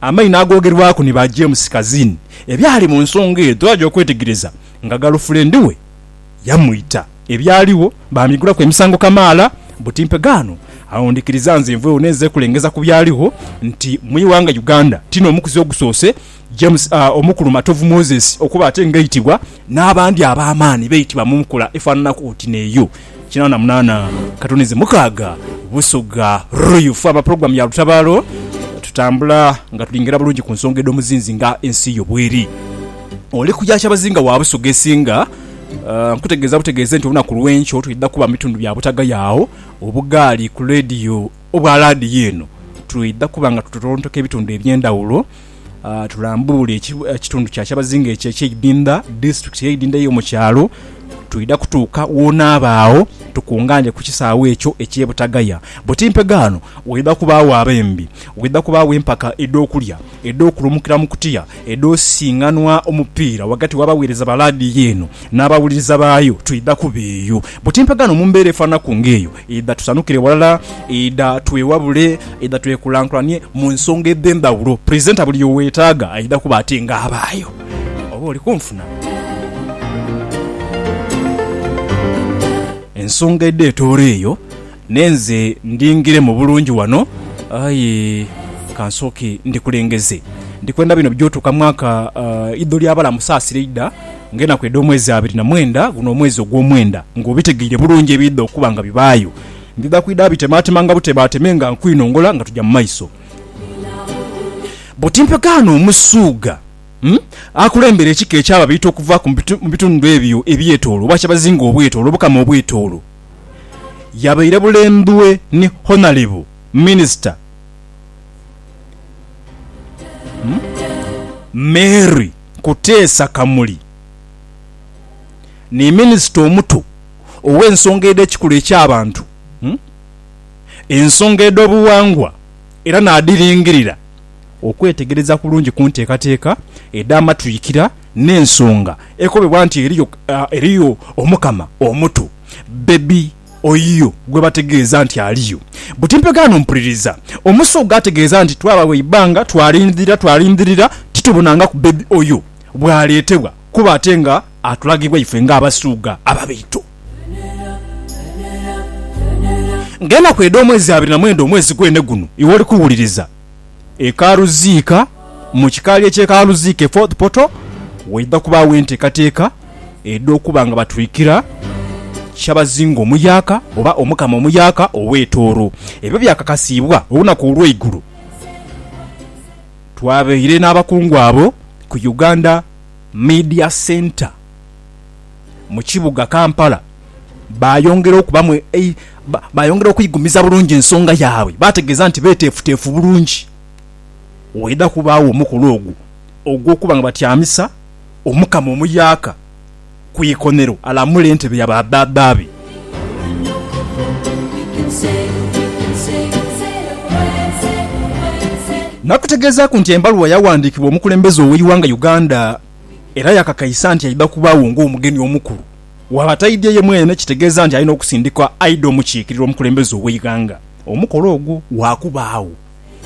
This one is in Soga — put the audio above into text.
Amaino agoogerwaku ni ba James Kazin, ebyali mu nsonga edho aja okwetegereza nga galufulendi we yamwita. Ebyaligho baamigulaku emisango kamaala buti mpegaano. Agho ndhikiriza nze nvughewo n'enze kulengeza ku byaligho nti mu ighanga Uganda tino omukuzi ogusoose James aa Omukulu Matovu Moses okuba ate ng'aitibwa n'abandi ab'amaani baitibwa mu nkola efaananaku oti n'eyo. Kinaana munaana katunizi mukaaga Busoga Royal Ffe aba Pulogulaamu ya Lutabaalo tutambula nga tulingera bulungi ku nsonga edh'omuzinzi nga ensi yo bweri. Oli ku ya Kyabazinga wa Busoga esinga, nkutegeeza butegeeze nti olunaku lw'enkyo twidha kuba mu bitundu bya Butaga yaagho obugaali ku leediyo obwa laadiyo eno. Twidha kuba nga tutontooka ebitundu eby'endhawulo Tulambuule ekitundu kya kyabazinga ekyo eky'eidinda, disiturikiti ey'eidinda ey'omu kyalo. Twidha kutuuka w'onaaba agho tukungaane ku kisaawe ekyo eky'e Butagaya. Buti mpegaano waidha kubaagho abembi, waidha kubaagho empaka edh'okulya, edh'okulumukira mu kutiya, edh'osisinganwa omupiira ghagati w'abaweereza ba laadiyo eno n'abawuliriza baayo. Twidha kuba eyo buti mpegaano mu mbeera efaananaku ng'eyo. Idha tusanukire ghalala, idha twewabule, idha twekulankulanie mu nsonga edh'endhawulo. Purizenta buli y'owetaaga aidha kuba ati nga abaayo. Oba oli kunfuna? Ensonga edha etooro eyo n'enze ndhingiremu bulungi wano, aye ka nsooke ndikulengeze. Ndikwenda bino by'otuuka mwaka idho ly'abalamu saasira idha. Ng'enaku edh'omwezi abiri na mwenda, guno omwezi ogw'omwenda, ng'obitegeire bulungi ebiidha okuba nga bibaayo, ndidha kwidha bitemaatema nga butebaateme nga nkwinongola nga tuja mu maiso. Bwoti mpegaano Omusuugha akulembera ekika eky'Ababiito okuva mu bitundu ebyo ebyetoolo oba kyebazinga obwetoolo obukama obwetoolo. Yabaire bulembwe ni Honalebo Minisita Mary. Kuteesa Kamuli ni Minisita omuto ow'ensonga edh'ekikula eky'abantu, ensonga edh'obuwangwa era naadhiringirira okwetegereza kulungi ku nteekateeka edh'amatwikira n'ensonga ekobebwa nti eriyo Omukama omuto, Baby. oyo gwe bategeeza nti aliyo. Buti mpegaano mpuliriza Omusoga ategeeza nti twabagho eibbanga twalindhirira twalindhirira titubonangaku bbebi oyo bw'aleetebwa kuba ate nga atulagibwa ife nga Abasuuga ababaito. Ng'enaku edh'omwezi abiri na mwenda omwezi gwene guno iwe oli kuwuliriza. e Karuziika mu kikaali eky'e Karuziika e Fort Portal waidha kubaagho enteekateeka edh'okuba nga batwikira Kyabazinga Omuyaaka oba Omukama Omuyaaka ow'e Tooro. Ebyo byakakasiibwa olunaku olw'eigulo. Twabaire n'abakungu abo ku Uganda Media Centre. mu kibuga Kampala baayongera okubamu baayongera okuigumiza bulungi ensonga yaabwe baategeeza nti beeteefuteefu bulungi waidha kubaagho omukolo ogwo ogw'okuba nga batyamisa Omukama omuyaaka ku ikonero alamule entebe ya ba baaba be. Nakutegeezaaku nti embaluwa yawandiikibwa omukulembeze ow'eighanga Uganda, Era yakakaisa nti aidha kubaagho ng'omugeni omukulu. Bw'aba taidhye ye mwene, kitegeeza nti alina okusindikwa aidhe omukiikirira omukulembeze ow'eighanga. Omukolo ogwo gwakubaagho.